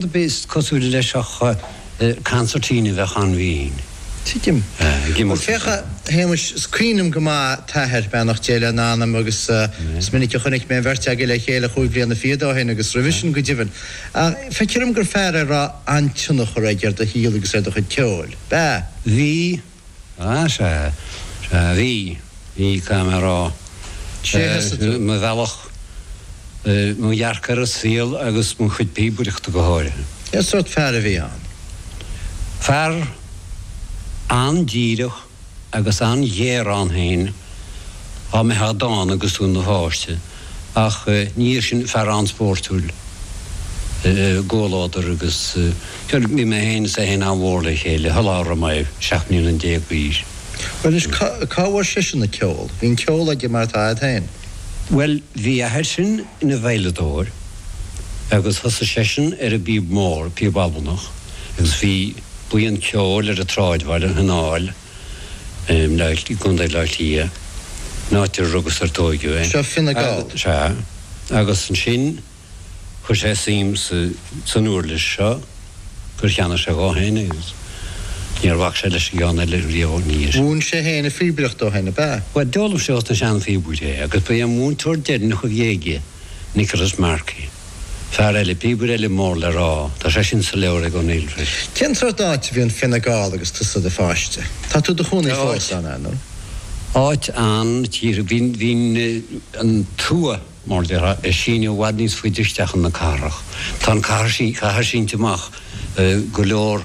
Is cosúil leis ach cancertine a bheadh ann bhínn. Tuigim. ag imeacht Bhuel féach a ansin. A Shéamuis, is cuimhin liom go maith t'athair, beannacht Dé lena anam, agus is minic a chonaic mé an bheirt agaibh le chéile cúig bliana fichead ó shin agus roimhe sin go deimhin. Ach feictear dom gur fear é a raibh an-tionchar aige ar do shaol agus ar do chuid ceoil. B'ea? Bhí. Sea, sea, sea, bhí, bhí, caithfidh mé a rá. Ar mo bhealach, mo dhearcadh ar an saol agus mo chuid píobaireachta go háirithe. Cén sórt fear a bhí ann? Fear an-díreach agus an-ghéar ann féin, dhá mbeifeá dána agus tú i do pháiste. ach ina dhiaidh sin fear an-spórtúil i gcomhluadar agus bhuel, bhí mé féin is é féin an-mhór le chéile, sula raibh mé seacht mbliana déag d'aois. Bhuel anois, cá bhfuair seisean an ceol? Bhí an ceol aige mar atá a'd féin? Bhuel, bhí a athair sin ina veidhleadóir agus thosaigh seisean ar an bpíob mhór, píob Albanach, agus bhí buíon ceoil ar an tsráidbhaile, An Aill, i gContae Átha Cliath, an áit ar rugadh 's ar tóigeadh é. Seo Fine Gall? Sea. Agus ansin chuir sé suim san uirlis seo gur cheannaigh sé dhó fhéin é agus níor bhac sé leis an gceann eile riamh níos mó. Mhúin sé fhéin an phíobaireacht dó fhéin, ab ea? Bhuel, d'fhoghlaim sé ó na seanphíobairí é agus ba é an múinteoir deireanach a bhí aige Nicholas Markey. Fear eile, píobaire eile mór le rá. Tá sé sin sa leabhar ag O'Neill freisin. Cén tsort áit a bhí i bhFine Gall agus tusa i do pháiste? Tá tú i do chónaí fós, an ea nó? Áit an, tír, bhí an, bhí an tuath mar a déarfá ag síneadh i bhfad níos faide isteach chun na cathrach. Tá an chathair, sí, chathair sínte amach go leor.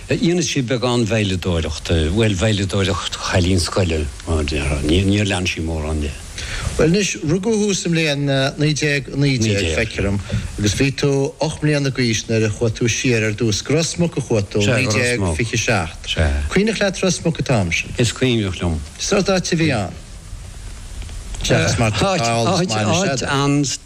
Dhéanadh sí beagán veidhleadóireachta, bhuel, veidhleadóireacht chailín scoile, mar a déarfá. Níor lean sí mórán de. Bhuel anois, rugadh thú sa mbliain 1919, feictear dom, agus bhí tú ocht mbliana d'aois nuair a chuaigh tú siar ar dtús go Ros Muc a chuaigh tú, 1927. An cuimhneach leat Ros Muc an t-am sin? Is cuimhneach liom. Cén sórt áit a bhí ann, seachas mar atá eolas maith anois agat.